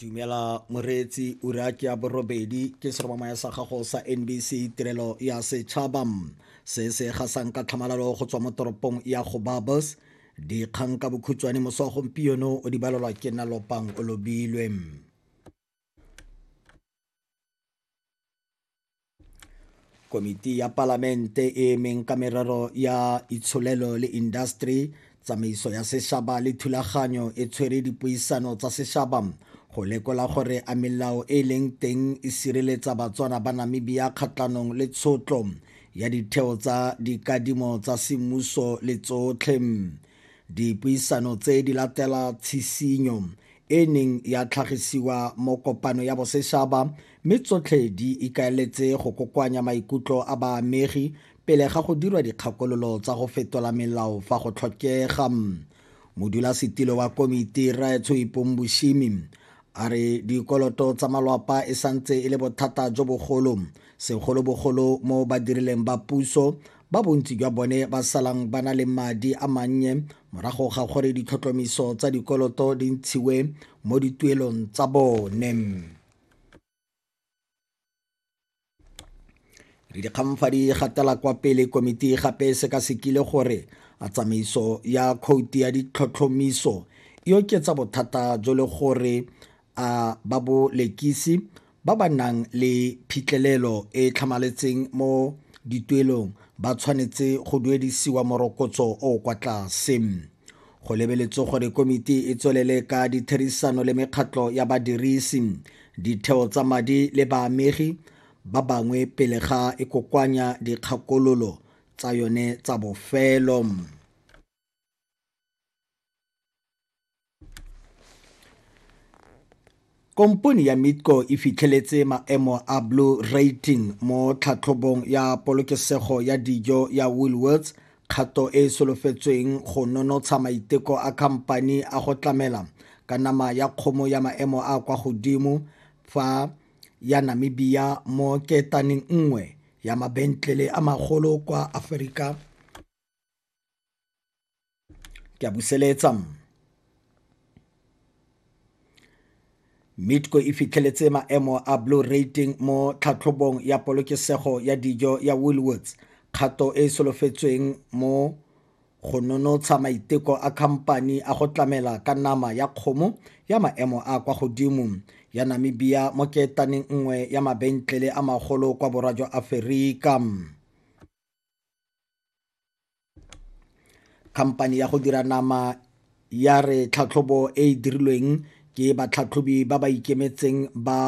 dumela moreetsi ura ke ya borobedi ke seromamaya sa gago sa nbc tirelo ya setšhaba se se gasang ka tlhamalalo go tswa mo toropong ya go babos dikgang ka bokhutshwane moso wa gompieno o di balelwa ke nalopang o lobilwe Komiti ya Palamente e emeng ka merero ya itsholelo le industry, tsamaiso ya sešaba le thulaganyo e tshwere dipuisano tsa sešaba go lekola gore a melao e e leng teng e sireletsa Batswana ba Namibia kgatlhanong le tshotlo ya ditheo tsa dikadimo tsa semmuso le tsotlhe. Dipuisano tse di latela tshisinyo e neng ya tlhagisiwa mo kopano ya bosešaba Mme tsotlhe di ikaeletse go kokoanya maikutlo a baamegi pele ga go dirwa dikgakololo tsa go fetola melao fa go tlhokega. Modulasetilo wa komiti Rre Tshoipong Boshimi a re dikoloto tsa malwapa e santse e le bothata jo bogolo segolobogolo mo badirileng ba puso ba bontsi jwa bone ba salang ba na le madi a mannye morago ga gore ditlhotlhomiso tsa dikoloto di ntshiwe mo dituelong tsa bone. re dikgangfa di gatela kwa pele komiti gape e sekasekile gore a tsamaiso ya khouti ya ditlhotlhomiso e oketsa bothata jo le gore a ba bo lekisi ba ba nang le phitlhelelo e e tlhamaletseng mo dituelong ba tshwanetse go duedisiwa morokotso o o kwa tlase Go lebeletswe gore komiti e tswelele ka ditherisano le mekgatlho ya badirisi, ditheo tsa madi le baamegi ba bangwe pele ga e kokoanya dikgakololo tsa yone tsa bofelo. Kompone ya Mitco e fitlheletse maemo a Blue Rating mo tlhatlhobong ya polokesego ya dijo ya Woolworths, kgato e e solofetsweng go nonotsha maiteko a khamphani a go tlamela ka nama ya kgomo ya maemo a a kwa godimo fa ya Namibia mo ketaneng nngwe ya mabentlele a magolo kwa Aforika ke a buseletsa mitco e fitlheletse maemo a blue rating mo tlhatlhobong ya polokesego ya dijo ya woolwoods kgato e e solofetsweng mo go nonotsha maiteko a khamphani a go tlamela ka nama ya kgomo ya maemo a kwa godimo ya namibia mo keetaneng nngwe ya mabentlele a magolo kwa borwa jwa aferika khamphane ya go dira nama ya re tlhatlhobo e e dirilweng ke batlhatlhobi ba ba ikemetseng ba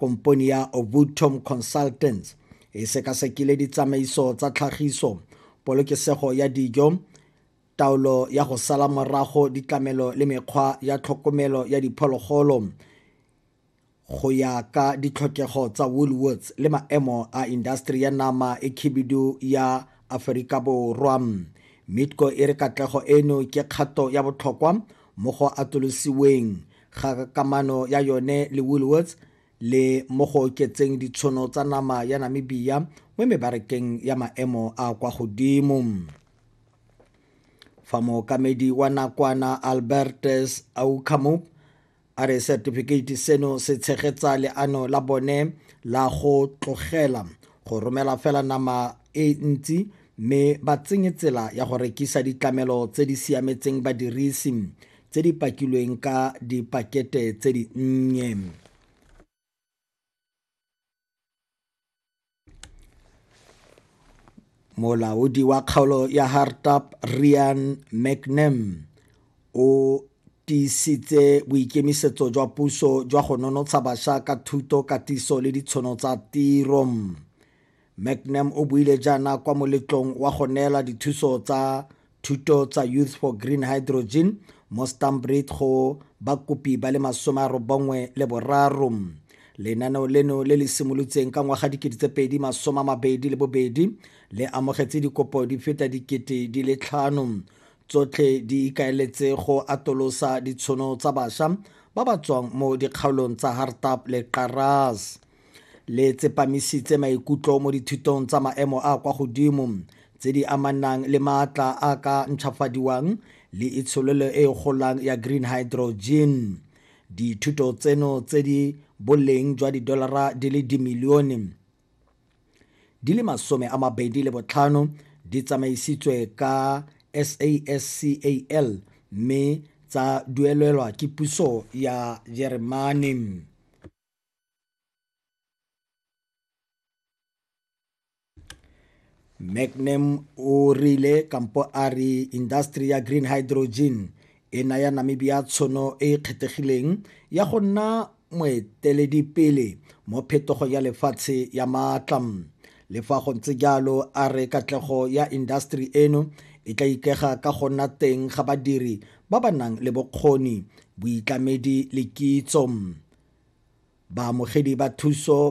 kompone ya ovutom consultants e sekasekile ditsamaiso tsa tlhagiso polokesego ya dijo taolo ya go sala morago ditlamelo le mekgwa ya tlhokomelo ya diphologolo Go ya ka ditlhokego tsa Woolworths le maemo a indaseteri ya nama e khibidu ya Aferika Borwa, Midco e re katlego eno ke kgato ya botlhokwa mo go atolosiweng ga kamano ya yone le Woolworths le mo go oketseng ditshono tsa nama ya Namibia mo mebarakeng ya maemo a a kwa godimo. Fa mookamedi wa nakwana Albertus Oukamop A re setifikeiti seno se tshegetsa leano la bone la go tlogela go romela fela nama e ntsi mme ba tsenye tsela ya go rekisa ditlamelo tse di siametseng badirisi tse di pakilweng ka dipakete tse di nnye. molaodi wa kgaolo ya hartap rian mcnam o tiisitse boikemisetso jwa puso jwa go nonotsha bašwa ka thuto katiso le ditshono tsa tiro mcnam o buile jaana kwa moletlong wa go neela dithuso tsa Thuto tsa Youth for Green Hydrogen mo Stanbreed go bakopi ba le masome a robongwe le boraro. Lenaneo leno le le simolotseng ka ngwaga dikete tse pedi masome a mabedi le bobedi le amogetse dikopo di feta dikete di le tlhano tsotlhe di ikaeletse go atolosa ditshono tsa basha ba ba tswang mo dikgaolong tsa Hartap le Qaras. Le tsepamisitse maikutlo mo dithutong tsa maemo a a kwa godimo tse di amanang le maatla a a ka ntšhwafadiwang le itsholelo e e golang ya green hydrogen. Dithuto tseno tse di boleng jwa didolara di le dimilione di le masome a mabedi le botlhano di tsamaisitswe ka SASCAL mme tsa duelelwa ke puso ya Jeremane. Magnum o rile kampo a re industry ya green hydrogen e naya Namibia tshono e e kgethegileng ya go nna moeteledipele mo phetogong ya lefatshe ya maatla. Le fa go ntse jalo, a re katlego ya indaseteri eno e tla ikega ka go nna teng ga badiri ba ba nang le bokgoni, boitlamedi le kitso. Baamogedi ba thuso